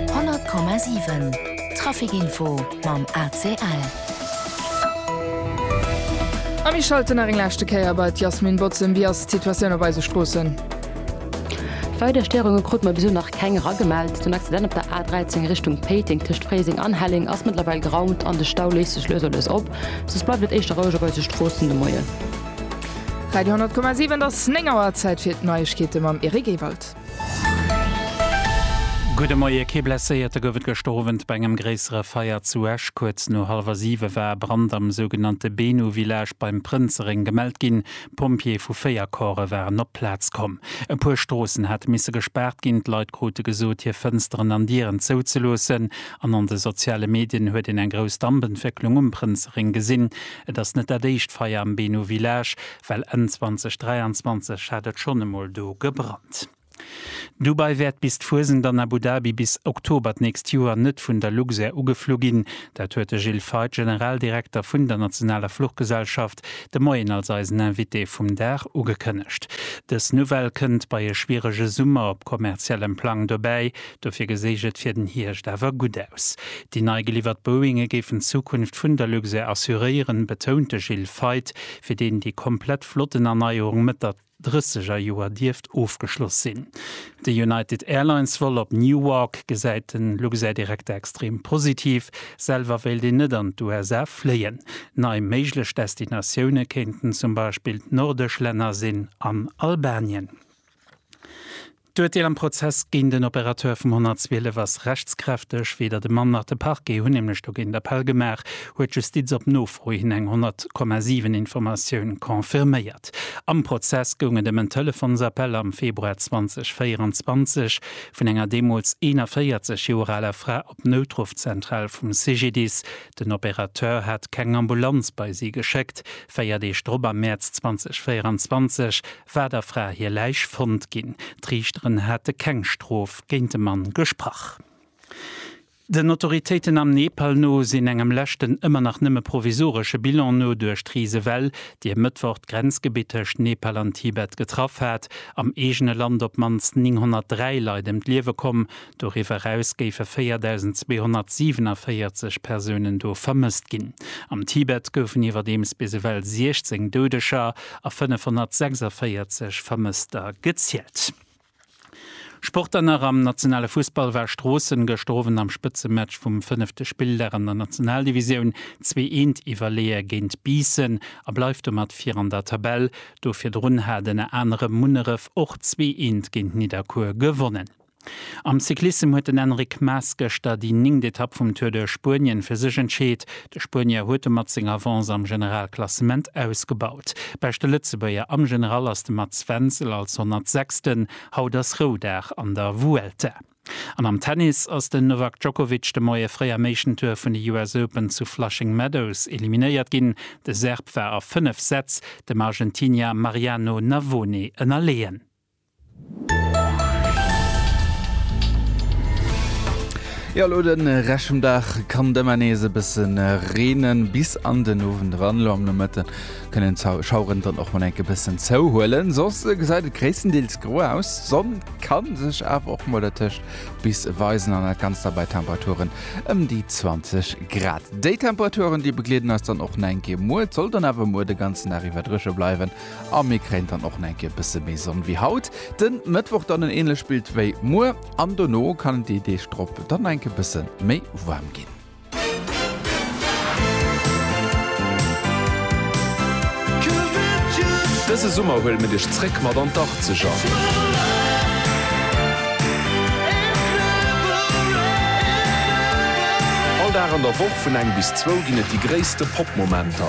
100,7 Traficinfo mam ACL. A mir schalten nach eng leschte Kéier bei d'Yasmin Bozem. Wéi ass d'Situatioun op eise Stroossen? Weider Stéierunge krute mer bis elo nach keng eragemellt. Den Accident op der A13 Richtung Péiteng tëscht Fréiseng an Helleng ass mëttlerweil geraumt an de Stau léist sech lues a lues op. Soss bleift et éischter roueg op eise Stroossen de Moien. Radio 100,7 et ass 9 Auer, Zäit fir d'Neiegkeete mam Eric Ewald. Gudde Moie, Kee Blesséierte gouf et gëschter Owend bei engem gréissere Feier zu Esch. Kuerz no hallwer siwe war e Brand am sougenannte Benu-Village beim Prënzereng gemellt ginn. Pompjeeë vu véier Corpse waren op d'Plaz komm. E puer Stroossen hate misse gespaart ginn, d'Leit krute gesot, hir Fënsteren an Dieren zouzeloossen. An an de soziale Medien huet een eng grouss Dampentwécklung um Prënzereng gesinn. Et ass net dat éischt Feier am Benu-Village. well Enn 2023 hat et schonn emol do gebrannt. Dubai wäert bis d'Fuesent an Abu Dhabi bis Oktober d'nächst Joer net vun der Luxair ugeflu ginn. Dat huet de Gilles Feith, Generaldirekter vun der nationaler Fluchgesellschaft, de Moien als eisen Invité vum Dag ugekënnegt. Dës Nouvelle kënnt bei e schwierege Summer op kommerziellem Plang dobäi. Dofir geséich et fir den Hierscht awer gutt aus. Déi nei geliwwert Boeinge géifen d'Zukunft vun der Luxair assuréieren, betount de Gilles Feith. fir deen déi komplett Flottenerneuerung Mëtt der drësseger Joer dierft ofgeschloss sinn. De United Airlines-Vol op Newark gesäit de Luxair-Direkter extrem positiv. Selwer wéilt een net an d'USA fléien. Nei méiglech Destinatioune kéinten zum Beispill d'nordesch Länner sinn an Albanien. D'Urteel am Prozess géint den Opérateur vum 112 ass rechtskräfteg. Weder de Mann nach de Parquet hunn nämlech dogéint Appell gemaach, huet d'Justiz op Nofro hin eng 100,7 Informatioun confirméiert. Am Prozess goung et ëm en Telefonsappell am Februar 2024 vun enger deemools 41 Joer aler Fra op d'Noutruffzentral vum CGDIS. Den Opérateur hat keng Ambulanz bei si geschéckt. Véier Deeg drop, am Mäerz 2024, war der Fra hir Läich fonnt ginn. D'Riichteren hate keng Strof géint de Mann gesprach. Den Autoritéiten am Nepal no sinn engem leschten, ëmmer nach nëmme provisoresche Bilan no, duerch d'Risewell, déi e Mëttwoch d'Grenzgebitt tëscht Nepal an Tibet getraff hat, am eegene Land op d'mannst 903 Leit ëm d'Liewe komm, Doriwwer eraus géife 4.247 Persounen do vermësst ginn. Am Tibet goufen iwwerdeems bis ewell 16 Doudeger a 546 Vermësster gezielt. Sport dann nach, Am nationale Fussball war Stroossen gëschter Owend am Spëtzematch vum fënnefte Spilldag an der Nationaldivisioun zwee Eent iwwerleeë géint Biissen a bleift domat vir an der Tabell. Do virdrun hat ënner anerem Munneref och zwee Eent géint Nidderkuer gewonnen. Am Cyclissem huet den Enric Mas gëschter déi néngt Etapp vum Tour de Spuenien fir sech entscheet. De Spuenier huet domat seng Avance am Generalklassement ausgebaut. Beschte Lëtzebuerger am General ass de Mats Wenzel als 106. Haut ass Roudag an der Vuelta. An am Tennis ass den Novak Djokovic de Moie fréi am éischten Tour vun de US Open zu Flushing Meadows eliminéiert ginn. De Serb war a 5 Sätz dem Argentinier Mariano Navone ënnerleeën. Jo, elo den Rescht vum Dag kann et ëmmer nees e bëssen reenen, bis an den Owend eran. Elo am Nomëtte kënnen d'Schaueren dann och mol enk e bëssen zouhuelen, soss gesäit et gréisstendeels gro aus. D'Sonn ka sech awer och mol dertëscht bis weisen an dat Ganzt da bei Temperaturen ëm déi 20 Grad. Déi Temperaturen, déi begleeden eis dann och nach eng Kéier muer. Et soll dann awer muer de ganzen Dag iwwer drëche bleiwen A mir kréien dann och eng Kéier bësse méi Sonn wéi haut. De Mëttwoch dann en änlecht Bild wéi muer an dono kann et déi Deeg drop dann eng Kéier bësse méi waarm ginn. Dëse Summer huele mir dech zréck mat an d'Arzeger! All Dag an der Woch vun eng bis zwou ginn et déi gréisste Pop-Momenter.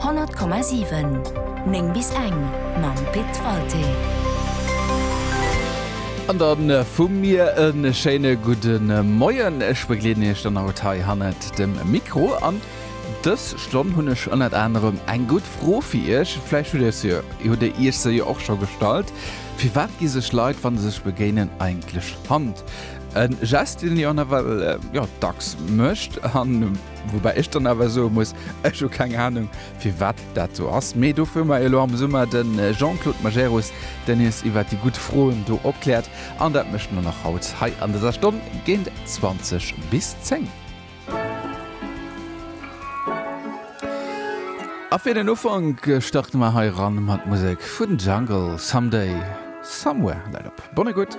100,7 9 bis eng mam Pit Walté. An dann vu mir e schéine gudde Moien. Ech begleeden Iech dann haut hei hannert dem Mikro. An dës Stonn hunn ech ënnert anerem eng gutt Fro fir Iech. Vläicht hutt Dir se, hutt Dir Iech se jo och scho gestallt, Firwat gi sech Leit, wa se sech begéinen, eigentlech d'Hand? E Gest, deen een jo nawell, jo, dacks mécht. An Woubäi ech dann awer soe muss, ech hu keng Anung, firwat dat sou ass. Mee dofir hu mer elo am Summer de Jean-Claude Majerus, deen iis iwwer déi gutt Froen do opkläert. An dat mécht en dann och haut hei an dëser Stonn géint 20 bis 10. A fir den Ufank starte mer hei eran mat Musek vun Jungle, Someday, Somewhere. Läit op! Bonne Écoute!